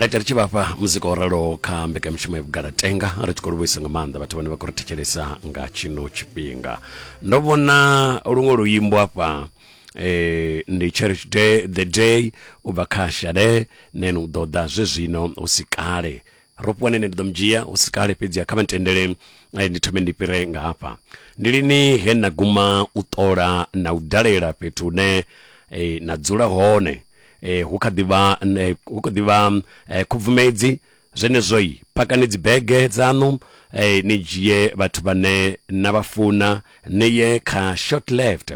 right ri tshi vhafha muzika o raloho kha mbekanyamushumo ya vhugala tenga ri tshi khou livhuisa nga maanḓa vhathu vhane vha khou ri thetshelesa nga tshino tshifhinga ndo vhona luṅwe luimbo afha eh, ndi cherish day the day u bva kha shade nene u ḓo ḓa zwezwino hu si kale ro fhiwa nene ndi ḓo mu dzhia hu si kale fhedzi kha vha ntendele eh, ndi thome ndi fhire nga hafha ndi lini he na guma u ṱola na u dalela fhethu hune eh, na dzula hone E, hu kha ḓi vha hu kha ḓi vha e, khubvumedzi zwenezwoi pakani dzibege dzaṋu e, ni dzhie vhathu vhane na vha funa ni ye kha short left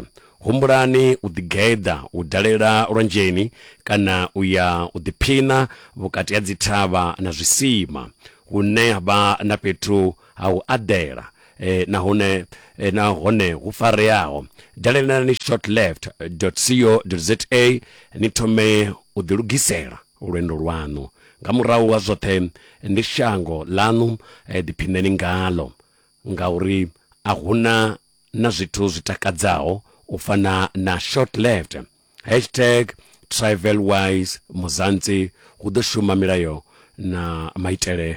humbulani u ḓigeḓa u dalela lwanzheni kana u ya u ḓiphiṋa vhukati ha dzithavha na zwisima hune ha vha na fhethu ha u aḓela nahone na hone hu fareaho dalelani shortleft co za ni thome u ḓilugisela lwendo lwaṋu nga murahu ha zwoṱhe ndi shango ḽaṋu ḓiphineni ngalo ngauri a huna na zwithu zwi takadzaho u fana na shortleft hashtag travelwise muzantsi hu ḓo shuma milayo na maitele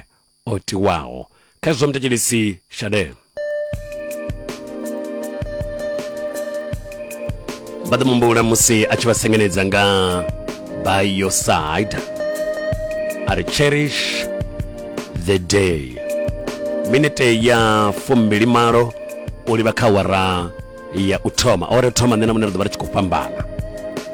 o tiwaho khezwo mthetshelisi shadee vha ḓo mumbula musi a tshi vha sengenedza nga by your side a ri cherish the day minete ya fumbili malo u livha kha wara ya u thoma ore thoma nṋe na muṋe ri ḓo vha ri tshi khou fhambana